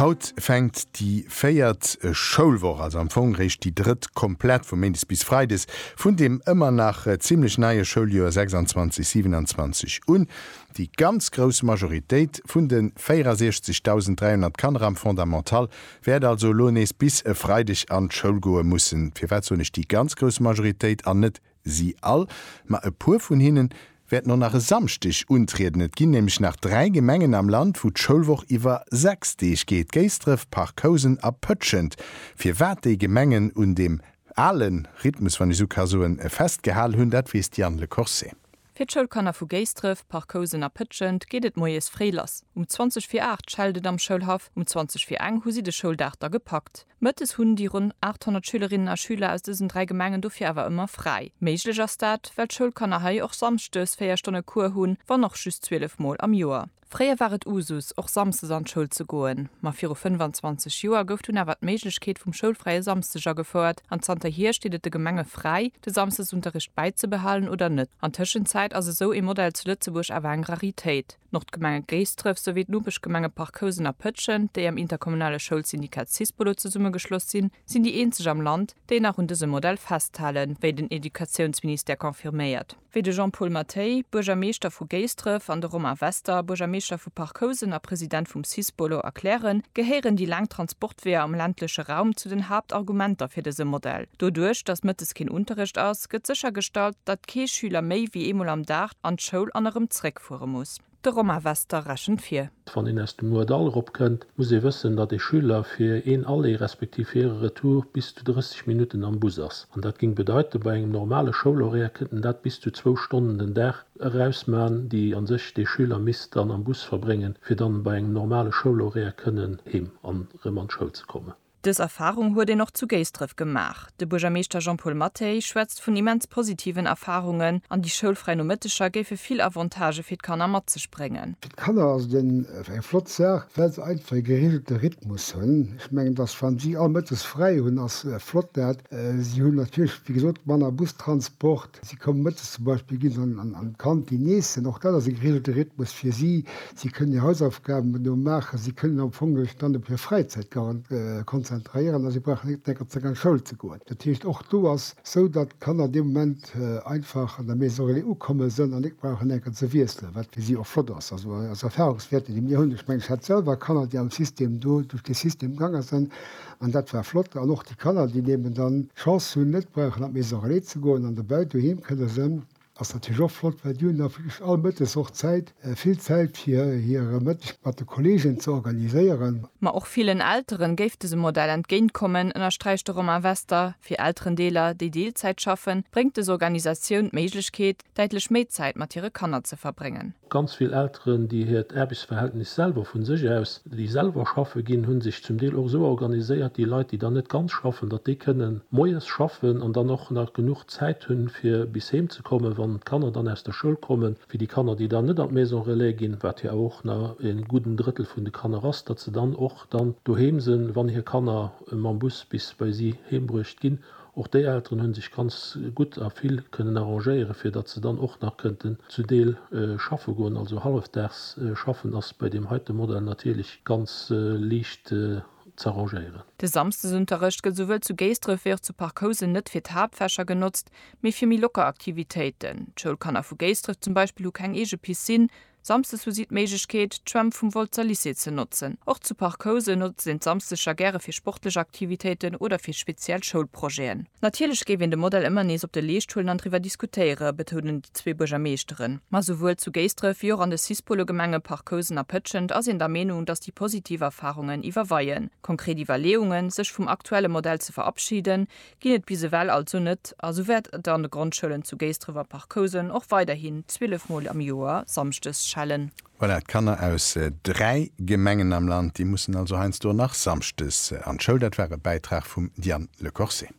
Haut fänkt déi véiert Schoulwoch, also am Fong réischt déi drëtt komplett, vu méindes bis freides, vun deem ëmmer nach zimmlech neie Schouljoer 26/27 un. Déi ganz grouss Majoritéit vun de 64.300 Kanner am Fondamental wäert also elo nees bis e Freideg an d'Schoul goe mussen. Firwat soen ech déi ganz grouss Majoritéit an net Si all, ma e puer vun hinne wäerten och nach e Samschdeg untrieden. Et ginn nämlech nach dräi Gemengen am Land, wou d'Schoulwoch iwwer sechs Deeg geet, Géisdref, Parc Housen a Pëtschent. Firwat déi Gemengen un deem ale Rhythmus, wann ech esou ka soen, festgehal hunn, dat weess d'Yann Le Corset. Fir d'Schoulkanner vu Géisdref, Parc-Housen a Pëtschent geet et moies fréi lass. Um 20 vir 8 schellt et am Schoulhaff, um 20 vir eng hu si de Schouldag da gepackt. Mëttes hunn déi ronn 800 Schülerinnen a Schüler aus dësen dräi Gemengen dofir awer ëmmer fräi. Méiglech ass dat, well d'Schoulkanner hei och samschdes véier Stonne Cours hunn, wann och just 12 Mol am Joer. Fréier war et Usus, och samsdes an d'Schoul ze goen, ma viru 25 Joer gouf dunn awer d'Méiglechkeet vum schoulfräie Samsdeg agefouert an zanter hier steet et de Gemenge fräi, de Samsdesunterricht bäizebehalen oder net. An Tëschenzäit ass esou ee Modell zu Lëtzebuerg awer eng Raritéit. D'Nordgemenge Géisdref souwéi d'Nopeschgemenge Parc-Housen a Pëtschent, déi am interkommunale Schoulsyndikat Syspolo zesummegeschloss sinn, sinn déi eenzeg am Land, déi nach un dësem Modell festhalen, wéi den Educatiounsministère confirméiert. wéi de Jean-Paul Mathey, Buergermeeschter vu Géisdref, an de Romain Wester, Buergermeeschter vu Parc Housen a President vum Cis-Bolo, erklären, gehéieren déi laang Transportweeër am ländleche Raum zu den Haaptargumenter fir dëse Modell. Doduerch, datt mëttes keen Unterrecht ass, gëtt séchergestallt, datt kee Schüler méi wéi eemol am Dag an d'Schoul an erëm zréckfuere muss. De Romain Wester rechent vir. Wann een aus dem Moerdall eropkënnt, muss ee wëssen, datt ee Schüler fir een Aller respektiv fir e Retour bis zu 30 Minutten am Bus ass. An dat géing bedeiten, bei engem normale Schoulhoraire kéint en dat bis zu zwou Stonnen den Dag erausman, déi a sech dee Schüler misst dann am Bus verbréngen, fir dann bei engem normale Schoulhoraire kënnen heem an erëm an d'Schoul ze kommen. Dës Erfarung huet een och zu Géisdref gemaach. De Buergermeeschter Jean-Paul Mathey schwätzt vun immens positiven Erfarungen an déi schoulfräi Nomëtteger géife vill Avantagë fir d'Kanner mat sech bréngen. Fir d'Kanner ass et eng flott Saach, well se einfach e gereegelte Rhythmus hunn. Ech mengen, dass wann si all mëttes fräi hunn, ass flott dat. Si hunn natierlech, wéi gesot, manner Bustransport. Si kommen mëttes zum Beispill, gi se an d'Kantin iessen, och dat ass e geregelte Rhythmus fir si. Si kënnen hir Hausaufgaben do maachen, si kënnen am Fong sech dann op hir Fräizäit konzentréieren a si brauchen net décker Zéck an d'Schoul ze goen. Dat heescht, och do ass esou, datt d'Kanner dee Moment einfach an der Maison relais ukomme sinn an net brauchen décker ze wiesselen, wat fir si och flott ass. Also aus Erfahrungswäerten, déi mir hunn, ech mengen, ech hat selwer Kanner, déi am System do duerch dee System gaange sinn, An dat war flott. An och déi Kanner, déi eben dann d'Chance hunn, net brauchen an d'Maison-relais ze goen an dobäi doheem kënne sënn, ass natierlech och flott, well déi hunn da wierklech all Mëttes och Zäit, vill Zäit, fir hire Mëtteg mat de Kolleegen ze organiséieren. Ma och villen Eltere géif dëse Modell entgéint kommen, ënnersträicht de Romain Wester. Fir Elterendeeler, déi Deelzäit schaffen, bréngt dës Organisatioun d'Méiglechkeet, däitlech méi Zäit mat hire Kanner ze verbréngen. Ganz vill Elteren, déi hiert Aarbechtsverhältnis selwer vu sech aus, déi selwer schaffe ginn, hu sech zum Deel och esou organiséiert, déi Leit, déi dann net ganz schaffen, datt déi kënne moies schaffen an dann och nach genuch Zäit hunn, fir bis heem ze kommen, wann d'Kanner dann aus der Schoul kommen, fir déi Kanner, déi dann net an d'Maison relais ginn, wat jo awer och na en gudden Drëttel vun de Kanner ass, datt se dann och dann doheem sinn, wann hir Kanner mam Bus bis bei si heembruecht ginn. Och déi Elteren hunn sech ganz gutt a vill kënnen arrangéieren, fir datt se dann och nach kënnten zu Deel schaffe goen. Also hallefdaags schaffen ass bei deem heite Modell natierlech ganz liicht z'arrangéieren. De Samsdesunterrecht gëtt souwuel zu Géisdref wéi och zu Parc Housen net fir d'Haaptfächer genotzt, mee fir méi locker Aktivitéiten. D'Schoulkanner vu Géisdref zum Beispill hu keng eege Piscine, Samsdes hu si d'Méiglechkeet, d'Schwämm vum Wolzer Lycée ze notzen. Och zu Parc Housen notzt een d'Samsdeger gäre fir sportlech Aktivitéiten oder fir speziell Schoulprojeten. Natierlech géif een de Modell ëmmer nees op de Leescht huelen an driwwer diskutéiere betounen déi zwee Buergermeeschteren. Ma souwuel zu Géisdref wéi och an de Cis-Polo-Gemenge Parc Housen a Pëtschent ass een der Meenung, datt déi positiv Erfarungen iwwerweien. Konkret Iwwerleeungen, sech vum aktuelle Modell ze verabschiden, ginn et bis ewell also net a sou wäert et an de Grondschoulen zu Géisdref a Parc-Housen och weiderhin 12 Mol am Joer samschdes schellen. Voilà, d'Kanner aus dräi Gemengen am Land, déi mussen also heiansdo nach samschdes an d'Schoul. Dat war e Bäitrag vum Diane Lecorset.